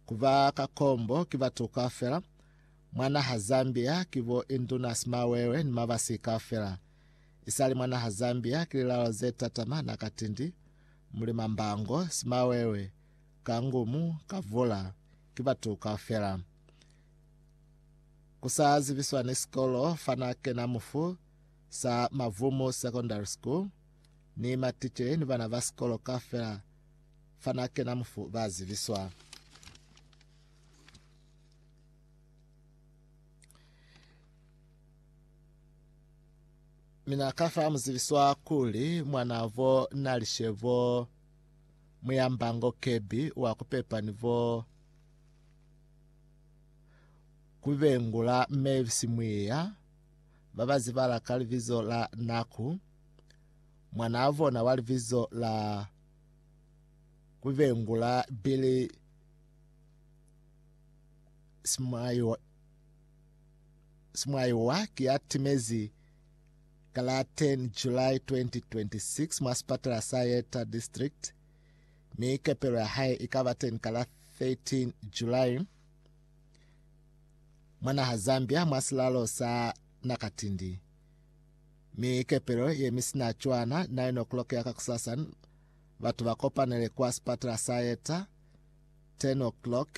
Kuba ka kombo ki batu kaufela mwa naha Zambia ki bo Induna Simawewe ni Mabasi kaufela. Isali mwa naha Zambia ki lilalo ze tatama na Katindi, Mulima Mbango, Simawewe, Kangumu, Kavula, ki batu kaufela. Kusa zibiswa ni sikolo fana kena mufu sa Mavumu Secondary School ni matiche ni bana ba sikolo kaufela fana kena mufu ba ziviswa. Mina kafa muziviswa kuli mwana vo na lishebo muyambango kebi wa kupepa ni vo kubengula mevisi mwiya babazibala ka libizo la naku mwana bona wa libizo la ku vengula Billy Smaiwa Smaiwa ki ya timezi ka la 10 July 2026 mwa sipatala sa Yeta District mi kepelo ya hae i ka ba teni ka la 13 July mwa naha Zambia mwa silalo sa Nakatindi. Mi kepelo ye mi sina cwana 9 o'clock ya kakusasa batu ba kopanele kwa sipatala sa Yeta 10 o'clock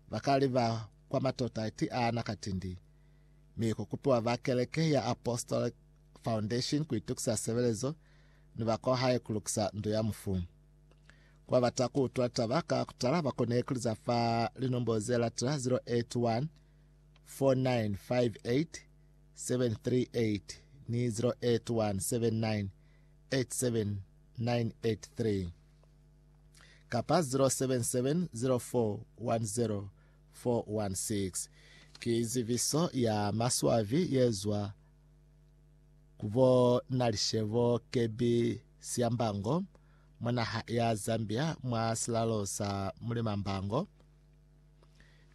bakaliba kwa matota iti ana katindi mi kukupiwa ba keleke ya Apostolic Foundation kuitukisa sebelezo ni ba kwa hae kulukisa ndu ya mufu. Kwa bata kuutwa taba ka kutala bakone ikuliza fa linombolo ze latela 081 4958 738 ni 0817987983 kapa 0770410416 ki ziviso ya maswabi yezwa kubo Nalishebo Kebi Syambango mwa naha ya Zambia mwa silalo sa Mulimambango.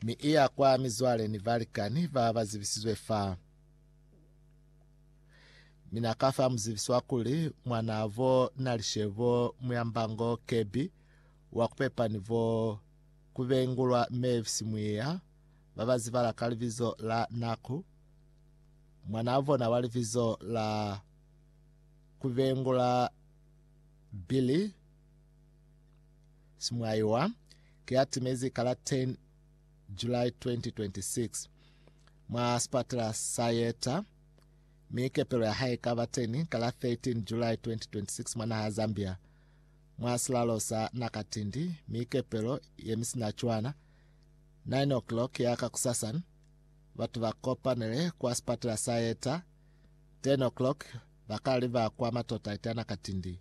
mi i ya kwa mizwale ni balikani ba ba zibisizwe fa. Mi na ka fa muzibiswa kuli mwanavo Nalishebo Muyambango Kebi wa ku pepa ni bo ku bengulwa Mavis Mwiya ba ba zibala ka libizo la Naku, mwanaa bona wa libizo la ku bengula Billy Simwaiwa ki ya timezi ka la 10 July 2026 mwa sipatela sa Yeta, mi kepelo ya hae ikaba teni ka la 13 July 2026 mwa naha ya Zambia mwa silalo sa Nakatindi, mi kepelo ye mi sina cwana. 9 o'clock ya ka kusasan, batu ba kopanele kwa sipatela sa Yeta, 10 o'clock ba kala liba kwa matota ita Nakatindi.